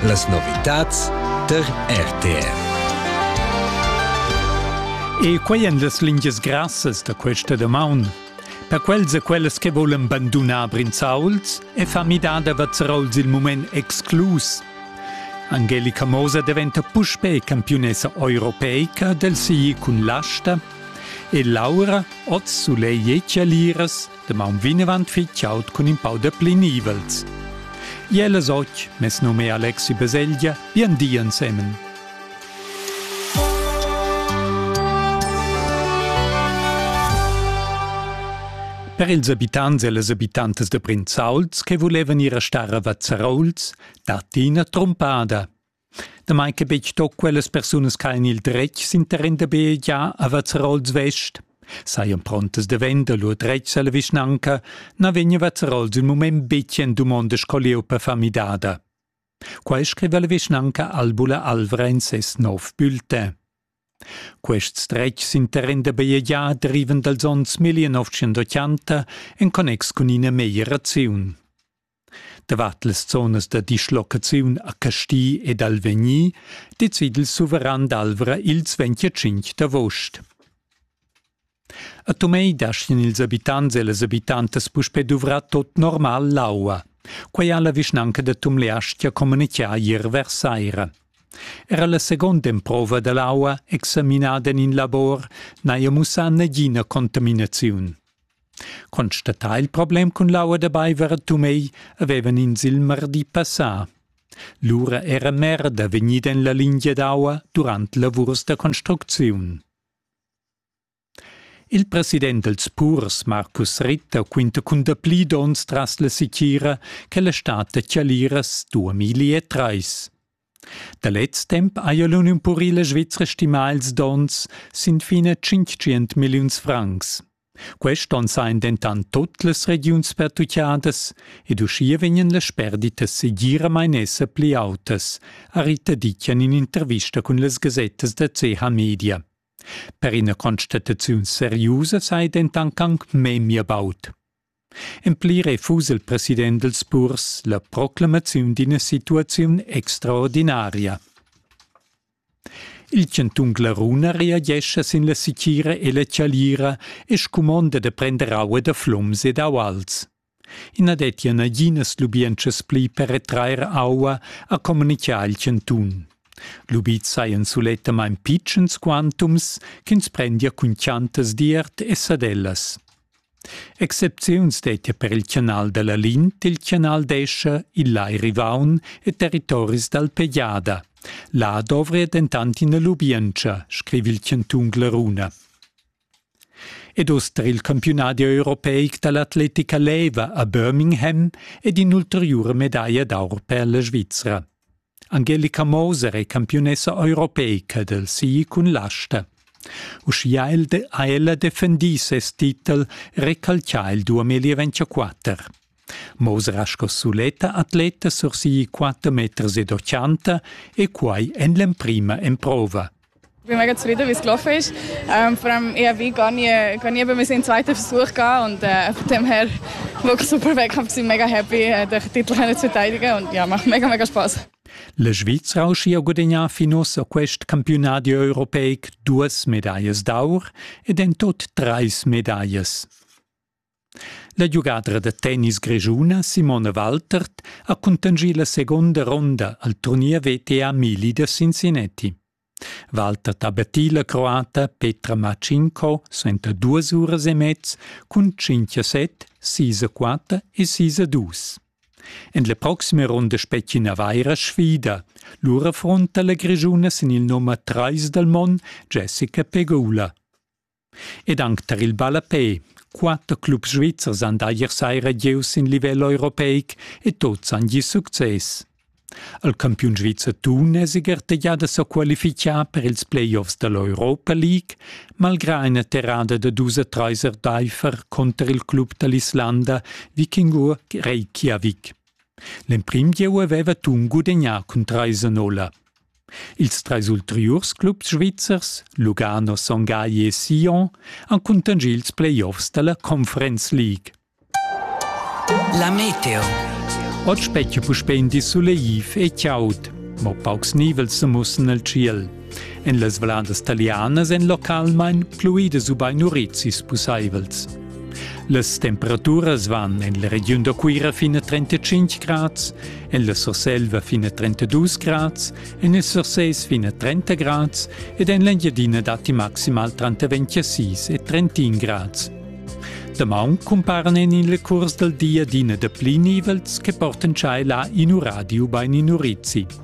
Las novitads tar RTR. E quai èn las lingias grassas da questa damaun. Per quels e quellas che volan bandunar Brinzauls è fa midada Vazzarols il mument exclus. Angelica Moser diventa puspè campiunessa europeica del sigli cun l'asta e Laura, oz Sulei Jecaliras, Damaun vinavant fit chaud cun in pau de pli nivels. Iel es och, mes nome è Alexi Beselgia, bien di ensemen. Per ils abitants e les abitantes de Prinzauls che volevan ir a star a Vazzarouls, dat ina trumpada. Damai che betg tut quellas persunas ch'hajan il dretg s'interrin da bajegiar a Vazzarols vest, sajan prontas da vender lur dretgs a la vischnanca, na vegn Vazzarols il mument betg en dumonda sco lieupa famidada. Quai scriva la vischnanca Albula Alvra in ses nov bulletin. Quests dretgs interrin da bajegiar derivan dals onns 1980 en connex cun ina meglieraziun. Davart las zonas da dislocaziun a Casti ed Alvegni decid il suveran d'Alvra ils 25 d'avost. A Tumei dashin ils abitants e las abitantas puspè duvrà tot normal l'aua. Quai ha la vischnanca da Tumleastia communitgà ier vers saira. Era la seconda emprova da l'aua examinada en in labor n'haja mussà nagina contaminaziun. Constatà il problem cun l'aua da baiver a Tumei avevan ins il mardi passà. Lura era merda vegnida en la lingia d'aua durant lavurs da construcziun. Il president dels purs, Marcus Ritter, quinta cun dapli dons tras la sitira che la stat da Chaliras 2003. Da lez temp haja l'Uniun purila svizra stimà ils donns sin fin a tschintgient milliuns francs. Quest onn sajan dentant tut las regiuns pertutgadas ed uschia vegnan las sperditas segiramain esser pli autas, ha Rita Dicken in intervista cun las gasettas da CH Media. Per ina constataziun seriusa sai dentant anc memia baud. En pli refusa il president dals purs la proclamaziun d'ina situaziun extraordinaria. Il chantun Glaruna reagescha sin la sitgira e la chalira e scumonda da prender aua da flums ed auals. I na dettia naginas lubientschas pli per retrair aua, ha communitgà il chantun. Lubits sajan sulettamain pitschens quantums ch'ins prendia cun chantas d'iert e sadellas. Excepziuns dettia per il canal da la Lin til canal d'Escha, il Lai Rivaun e territoris dal Pejada. Là dovria dentant ina lubientscha, scriva il chantun Glaruna. Ed uss tar il campiunadi europeic da l'atletica leva a Birmingham ed in'ulteriura medaglia d'aur per la Svizra. Angelica Moser è campiunessa europeica del ski cun l'asta. Uschia ha ella defendì ses titel, recalcià il 2024. Moser ha sco suletta atleta sur ski 4 meters ed 80 e quai en l'emprima emprova. bin mega zufrieden, wie es gelaufen ist. Ähm, vor allem, ich wie gar nie, gar nie bei mir seinen zweiten Versuch gehabt und äh, von dem her wirklich super Wettkampf, bin mega happy, äh, den Titel zu verteidigen und ja, macht mega, mega Spaß. Le Schweizer Auschia Gudegnà finus a quest campiunadi europeic duas medallas d'aur ed en tot treis medallas. La giugadra da tennis grischuna Simone Waltert ha cuntanschì la segunda ronda al turnier VTA Mili da Cincinnati. Waltert ha battì la croata Petra Matschinko suenter duas uras e mez cun 5-7, 6-4 e 6-2. En la proxima ronda spetgi una vaira sfida. Lura affronta la grischuna sin il nummer 3 dal Mon Jessica Pegula. Ed anc tar il ballapè. Quatter clubs svizzers han da ier saira gieu sin livel europeic e tuts han gì success. Il campiun svizzer Thun è siger tegià da sa qualifichar per ils playoffs da l'Europa League, malgrà ina terrada da dus e trais erdaifer cunter il club da l'Islanda Vikingur Reykjavik. L'emprim gieu aveva Thun gudegnà cun trais a nolla. Ils treis ulteriurs clubs svizzers, Lugano, Son Gagli e Sion, han cuntanschì ils playoffs da la Conference League. La Meteo. Oz specchia puspè in di suleiv e chaud, mo paucs nivels sa mussan al tschiel. En las valandas talianas èn localmain pluidas ubain urizis pussaivels. Las temperaturas van en la regiun da Cuira fin a 35 grads, en la Surselva fin a 32 grads, en il Surses fin a 30 grads ed en l'Engiadina datti maximal tranter 26 e 31 grads. Damaun cumparan en il curs dal di adina dapli nivels che portan tschai là in uradio bain in urizi.